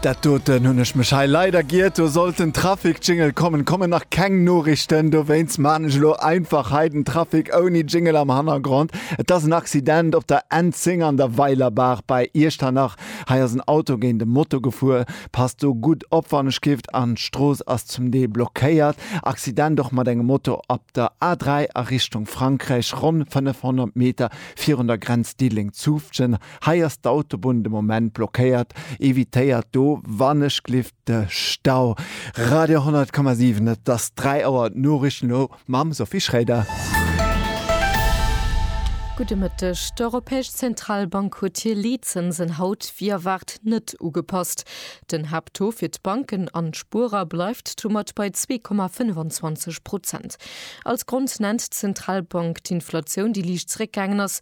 Dat doten hunn ech mech hei leider giert, do sollt den Trafic Jingle kommen, kommen nach keng Noriichten, dowéinst man ech elo einfach hei den Trafic ouni Jingle am Hannergrond. Et ass en Accident op der N 10 an der Weilerbaach bei Iechternach, hei ass en Auto géint e Moto gefuer. Passt do gutt op wann ech gifft, an d'Strooss ass zum Deel blockéiert. Accident och mat engem Moto op der A 3 a Richtung Frankräich, ronn 500 Meter virun der Grenz Diddeleng-Zutphen. Hei ass d'Autobunn de Moment blockéiert, evitéiert do wannechgelift de Stau. Radio 10,7 Et ass 3 Auer, d'Noriichten elo mam Sophie Schroeder. Gudde Mëtteg. D'Europäesch Zentralbank huet hir Leetzënsen haut wéi erwaart net ugepasst. Den Haapttaux fir d'Banken an d'Spuerer bleift domat bei 2,25 Prozent. Als Grond nennt d'Zentralbank d'Inflatioun, déi liicht zeréckgaangen ass.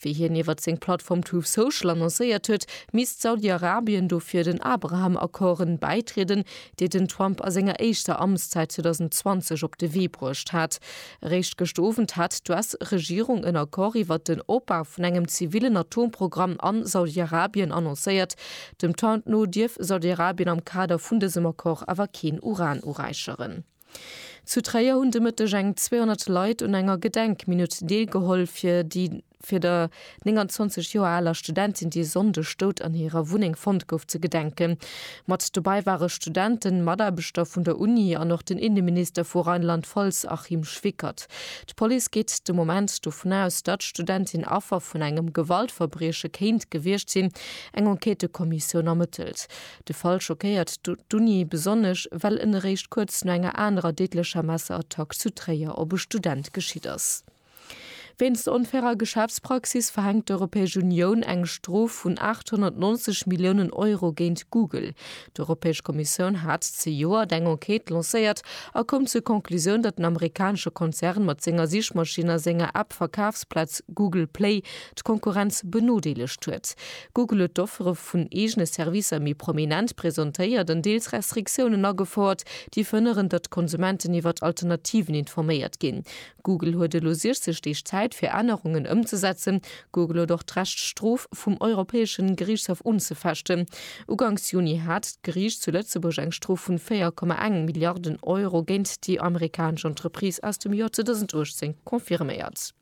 Wéi hien iwwert seng Plattform Truth Social annoncéiert huet, misst Saudi-Arabien dofir den Abraham-Accorden bäitrieden, déi den Trump a senger éischter Amtszäit 2020 op de Wee bruecht hat. Eréischt gëscht Owend hat d'US-Regierung en Accord iwwert den Opbau vun engem zivillen Atomprogramm a Saudi-Arabien annoncéiert. Dem Trump no dierf Saudi-Arabien am Kader vun dësem Accord awer keen Uran uräicheren. Zu Tréier hunn de Mëtteg eng 200 Leit un enger Gedenkminutt deelgeholl fir déi fir der 29 Joer aler Studentin, déi e Sonndeg dout an hirer Wunneng fonnt gouf, ze gedenken. Mat dobäi ware Studenten, Mataarbechter vun der Uni an och den Inneminister vu Rheinland-Pfalz Achim Schwickert. D'Police geet de Moment dovun aus, datt d'Studentin Affer vun engem Gewaltverbrieche kéint gewiescht sinn. Eng Enquêtëkommissioun ermëttelt. De Fall schockéiert d'Uni besonnesch, well en eréischt kuerz no enger anerer deedlecher Messerattack zu Tréier op e Student geschitt ass. Wéinst der onfairer Geschäftspraxis verhänkt d'Europäesch Unioun eng Strof vun 890 Milliounen Euro géint Google. D'Europäesch Kommissioun hat zejoert eng Enquête lancéiert a koum zur Conclusioun, datt den amerikanesche Konzern mat senger Sichmaschinn a senger App-Verkafsplaz Google Play d'Konkurrenz benodeelegt huet. Google huet d'Offere vun eegene Servicer méi prominent presentéiert an deels Restriktiounen agefouert, déi verhënneren, datt d'Konsumenten iwwert Alternativen informéiert ginn. Google huet elo 60 Deeg Zäit, fir Ännerungen ëmzesetzen. Google huet och d'Recht, d'Strof vum Europäesche Geriichtshaff unzefechten. Uganks Juni hat d'Geriicht zu Lëtzebuerg eng Strof vun 4,1 Milliarden Euro géint déi amerikanesch Entreprise aus dem Joer 2018 confirméiert.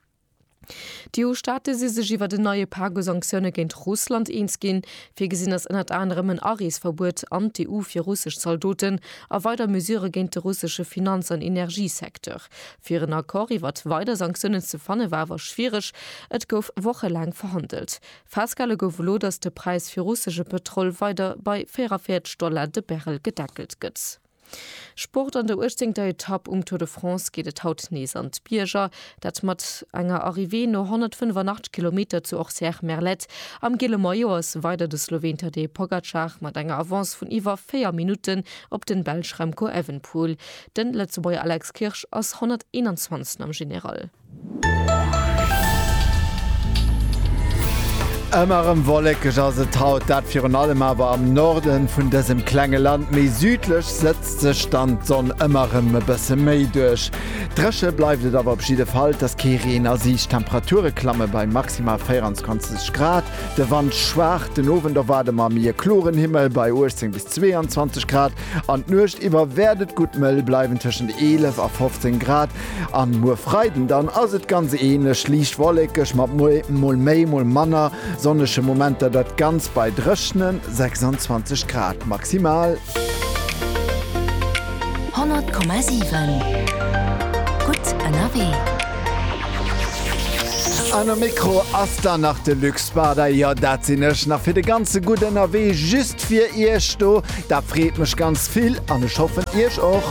D'EU-Staate si sech iwwert en neie Pak u Sanktioune géint Russland eens ginn. Virgesinn ass ënnert anerem en Areesverbuet an d'EU fir russesch Zaldoten a weider Mesure géint de russesche Finanz an Energiesecteur. Fir en Accord iwwert weider Sanktiounen ze fanne war awer schwiereg, et gouf wochelaang verhandelt. Festgehale gouf elo, datt de Präis fir russesche Pëtrol weider bei 44 Dollar de Barrel gedeckelt gëtt. Sport, An der uechtzéngter Etapp um Tour de France geet et haut nees an d'Bierger. Dat mat enger Arrivée no 185 Kilometer zu Orcières-Merlette. Am gele Maillot ass weider de Sloween Tadej Pogacar mat enger Avance vun iwwer 4 Minutten op den Belsch Remco Evenepoel. Den Lëtzebuerger Alex Kirsch ass 121. am General. Ëmmer erëm wollekeg ass et haut, dat virun allem awer am Norde vun dësem klenge Land. Méi südlech sëtzt sech dann d'Sonn ëmmer erëm e bësse méi duerch. Dréche bleift et awer op jidde Fall, et ass kee Reen a Siicht. D'Temperature klamme bei maximal 24 Grad, de Wand schwaach. Den Owend erwaarde mer méi e kloren Himmel bei 18 bis 22 Grad an d'Nuecht iwwer wäert et gutt mëll bleiwen, tëschent 11 a 15 Grad. An muer Freiden dann ass et ganz ähnlech, liicht wollekeg mat mol méi mol manner sonnege Momenter, dat ganzt bei dréchnen 26 Grad maximal. 100,7 gutt ënnerwee. An um Mikro ass dann nach de Luc Spada, jo dat sinn ech nach fir de ganze Gutt ënnerwee just fir iech do. Dat freet mech ganz vill an ech hoffen iech och.